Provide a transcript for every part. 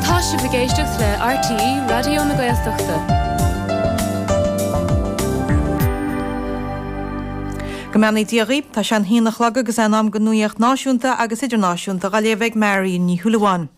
Tá sibh ag éisteacht le RTÉ Raidió na Gaeltachta. Go mbeannaí Dia dhaoibh, tá sé an haon a chlog agus é in am don nuaíocht náisiúnta agus idirnáisiúnta dha léamh ag Marion Ní Shúilleabháin.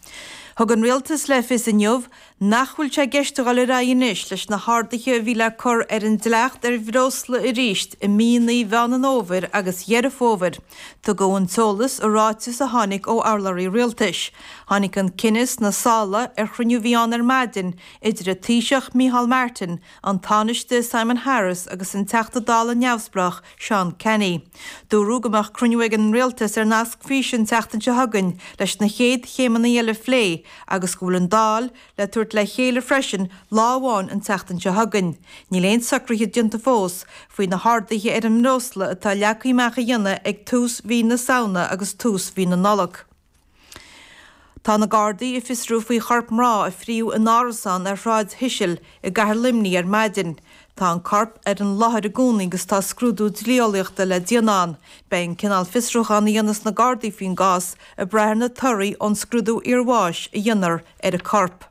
Thug an Rialtas le fios inniu nach bhfuil sé i gceist a dhul ar aghaidh anois leis na harduithe a bhí le cur ar an dleacht ar bhreosla arís i míonna Mheán an Fhómhair agus Dheireadh Fómhair. Tugadh an t-eolas i ráiteas a tháinig ó urlabhraí Rialtais. Tháinig an cinneadh sna sála ar chruinniú a bhí ann ar maidin idir an Taoiseach Micheál Martin, an Tánaiste Simon Harris agus an Teachta Dála neamhspleách Seán Canney. Dúradh go mbeadh cruinniú ag an Rialtas ar nasc físe an tseachtain seo chugainn leis na chéad chéimeanna eile a phlé agus go bhfuil an Dáil le tabhairt le chéile freisin lá amháin an tseachtain seo chugainn. Níl aon socruithe déanta fós faoi na harduithe ar an mbreosla atá leagtha amach a dhéanamh ag tús mhí na Samhna agus tús mhí na Nollag. Tá na Gardaí ag fiosrú faoi chorp mná a fríothadh in árasán ar Shráid Cecil i gcathair Luimnigh ar maidin. Tá an corp ar an láthair i gcónaí agus tá scrúdú dlí-eolaíochta le déanamh ann. Beidh an cineál fiosrúchán a dhéanfas na Gardaí faoin gcás ag brath ar na torthaí ón scrúdú iarbháis a dhéanfar ar an corp.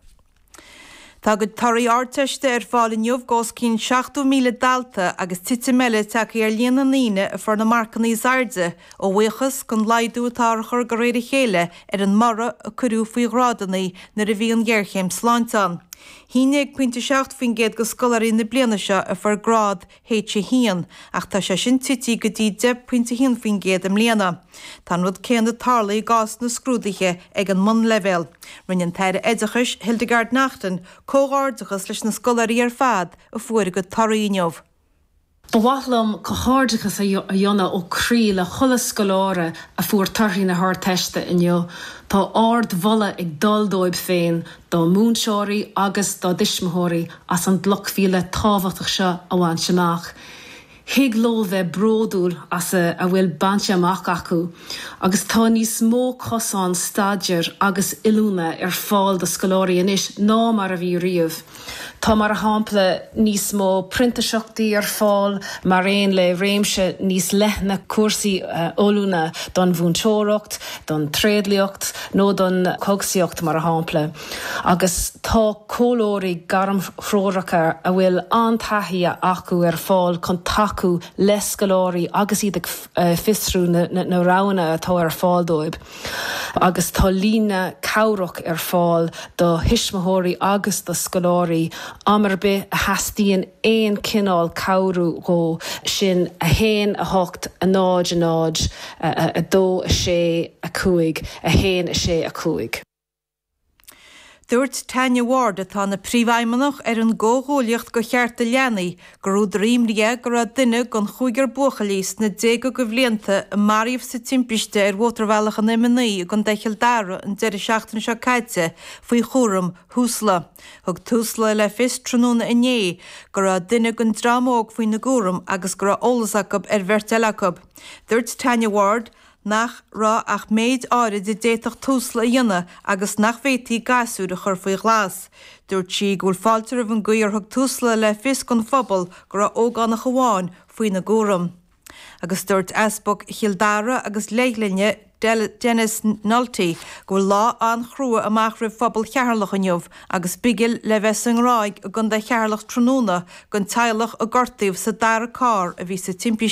Tá a gcuid torthaí Ardteiste ar fáil inniu d'os cionn 70,000 dalta agus titim eile tagtha ar líon na ndaoine a fuair na marcanna is airde a bhuíochas den laghdú atá á chur de réir a chéile ar an mborradh a cuireadh faoi ghrádanna nuair a bhí an ghéarchéim sláinte ann. Bhí 11.7% de scoláirí na bliana seo a fuair grád H1, ach tá sé sin tite go dtí 10.1% i mbliana. Tá an rud céanna ag tarlú i gcás na scrúduithe ag an mbunleibhéal. Rinne an tAire Oideachais, Hildegarde Naughton, comhghairdeachas leis na scoláirí ar fad a fuair a gcuid torthaí inniu. Ba mhaith liom comhghairdeachas a dhéanamh ó croí le chuile scoláire a fuair torthaí na hArdteiste inniu. Tá ard-mholadh ag dul dóibh féin, dá múinteoirí agus dá dtuismitheoirí as an gcloch mhíle thábhachtach seo a bhaint amach. Thig leo bheith bródúil as a bhfuil bainte amach acu agus tá níos mó cosán staidéir agus oiliúna ar fáil do scoláirí anois ná mar a bhí riamh. Tá, mar shampla, níos mó printiseachtaí ar fáil mar aon le réimse níos leithne cúrsaí oiliúna don mhúinteoireacht. don tréidliacht nó don chógaisíocht, mar shampla, agus tá comhairleoirí gairmthreoracha a bhfuil an-taithí acu ar fáil chun tacú le scoláirí agus iad ag fiosrú na roghanna atá ar fáil dóibh agus tá líne chabhrach ar fáil do thuismitheoirí agus do scoláirí am ar bith a theastaíonn aon chineál cabhrú dhóibh, sin 1 8 0 0 2, 6, 5, 1, 6, 5. Dúirt Tanya Ward, atá ina Príomhfheidhmeannach ar an gComhghuaillíocht go Chearta Leanaí, gur údar imní é go raibh duine den chúigear buachaillí sna déaga go bhlianta a maraíodh sa timpiste ar Mhótarbhealach an M9 i gContae Chill Dara an deireadh seachtaine seo caite faoi chúram Thusla. Thug Tusla le fios tráthnóna inné go raibh duine den dream óg faoina gcúram agus go raibh eolas acu ar bheirt eile acu. Dúirt Tanya Ward nach raibh ach méid áirid a d'fhéadfadh Tusla a dhéanamh agus nach bhféadfaí gasúir a chur faoi ghlas. Dúirt sí go bhfuil fáilte roimh an gcaoi ar thug Tusla le fios don phobal go raibh ógánach amháin faoina gcúram. Agus dúirt Easpag Chill Dara agus Leithghlinne, Denis Nulty, go bhfuil lá an-chrua amach roimh phobal Cheatharlach inniu agus bigil le bheith sa nGráig i gContae Cheatharlach tráthnóna don teaghlach a gortaíodh sa dara carr a bhí sa timpiste.